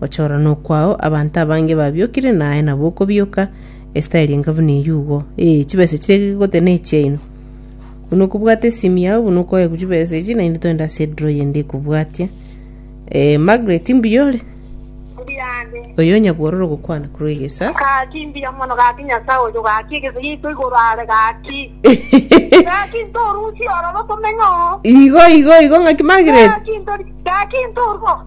Gochorana okwao abanto abange babiokire naye nabwo okobioka, esitayari enga buna eyio igo. Ee, chibesa chiria gegote nechiaino. Buna okobwate esimi yao buna okoegwa chibesa echi naende toende ase ediro eyende ekobwatia. Eh, Margaret mbuya ore? Mbuya ande. Oyo nyabwororo gokwana korwa egesa. Gaki mbuya mono gaki Nyasae oyo gaki egesa giaito igoro are gaki. Gaki ntorusie ororo tomenye oo. Igo igo igo ng'aki Margaret. Gaki ntori gaki ntorua.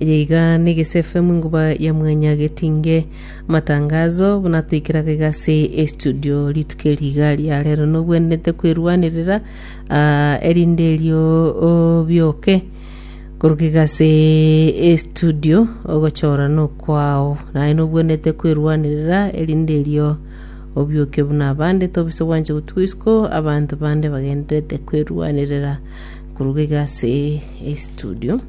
Eye iga negesefemu inguba ya mwanya getinge amatangazo buna toikeraga iga ase estudio rituko eri iga ria rero nogwenerete kwerwanerera ah, erinde erio obioke koruga iga ase estudio ogochora nokwao naye nobwenerete kwerwanerera erinde erio obioke buna abande tobisa gwancha gotuga isiko abanto bande bagendererete kwerwanerera koruga iga ase estudio